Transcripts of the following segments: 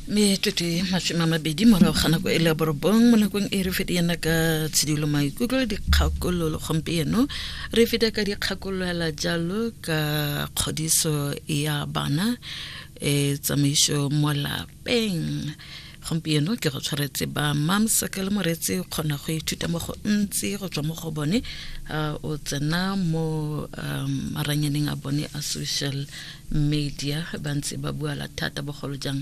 me tlotse masome a mabedi morago ga nako e le ya borobong mo nakong e re fete yana ka tshedilo maikutlo dikgakololo gompieno re fete ka dikgakololwela jalo ka kgodiso ya bana e tsamaiso mo lapeng gompieno ke go tshwaretse ba mamsaka le moretse o kgona go ithuta mo go ntsi go tswa mo go bone uh, o tsena mo um, maranyaneng a bone a social media ba ntse ba buala thata bogolo jang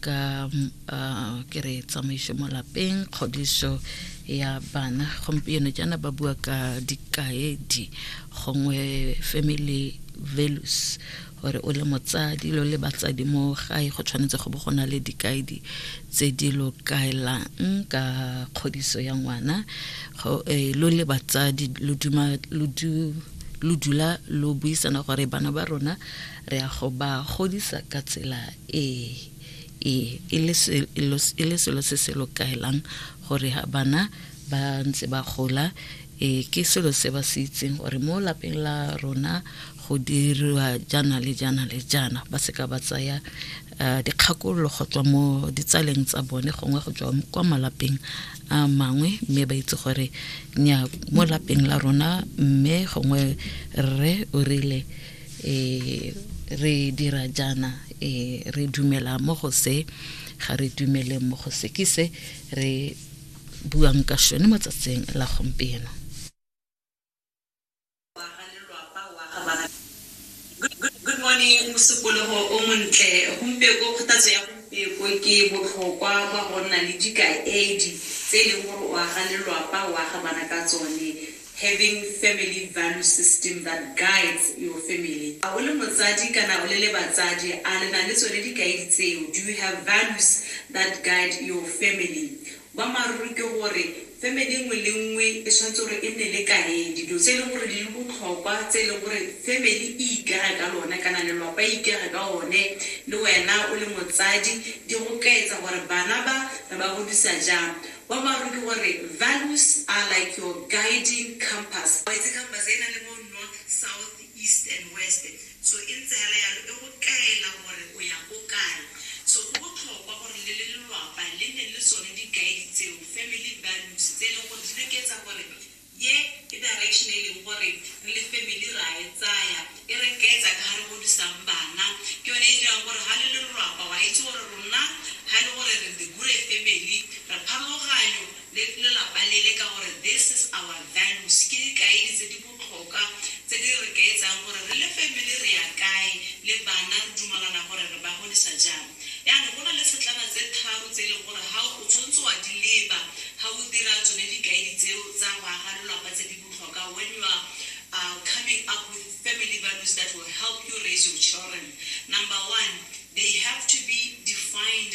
ka uh, ke re tsamaiso mo lapeng kgodiso ya bana gompieno jaana ba bua ka dikaedi gongwe family values Gore o le motsadi lo le batsadi mo gae go tshwanetse go bo go na le dikaedi tse di lo kaelang ka kgodiso ya ngwana. Eh, lo le batsadi lo duma lo du lo dula lo buisana gore bana ba rona re ya go ba godisa ka tsela e e e le selo se se lo kaelang gore ha bana ba ntse ba gola e ke selo se ba se itseng gore mo lapeng la rona go diriwa jaana le jaana le jaana ba seka ba tsaya uh, dikgakololo go tswa mo ditsaleng tsa bone gongwe go tswa kwa malapeng a uh, mangwe mme ba itse gore nya mo lapeng la rona mme gongwe rre o rile eh, re dira jaana eh, re dumela mo go se ga re dumele mo go se ke se re buang ka šone mo tsatsing la gompieno Wa ga lelwapa wa ga ba ga. Good morning, mosupologo o montle. Gompieko, kgothatso ya gompieko ke botlhokwa kwa go nna le dikaedi tse e leng gore o aga lelwapa o aga bana ka tsone, having family value system that guides your family. A o le motsadi kana o le le batsadi, a le na le tsone dikaedi tseo, do you have values that guide your family? Boammaaruri ke gore family nngwe le nngwe e tshwanetse gore e nne le kaedi, dilo tse e leng gore di le botlhokwa tse e leng gore family e ikega ka lone kana lelwapa e ikega ka one le wena o le motsadi di go kaetsa gore bana ba re ba godisa jang. Boammaaruri ke gore values are like your guiding compass. It's a compass e e nang le bo north, south, east and west. So e ntse hela yalo e go kaela gore o ya ko kae. So go botlhokwa gore le le lelwapa le nne le tsone di guide tseo, family values, tse e leng gore di le ketsa gore ye ke direction e leng gore re le family re a e tsaya, e re kaetsa ka ha re godisang bana. Ke yone e dirang gore ha le le lelwapa wa itse gore rona ha ele gore re the Gure family re pharologanyo le lelapa lele ka gore this is our values, ke dikaedi tse di botlhoka tse di re kaetsang gore re le family re ya kae le bana, re dumalana gore re ba godisa jang. Jaanong go na le setlana tse tharo tse e leng gore ga o tshwanetse wa di leba ga o dira tsone dikaedi tseo tsa go aga lelwapa tse di botlhoka when you are coming up with family values that will help you raise your children. Number one, they have to be defined.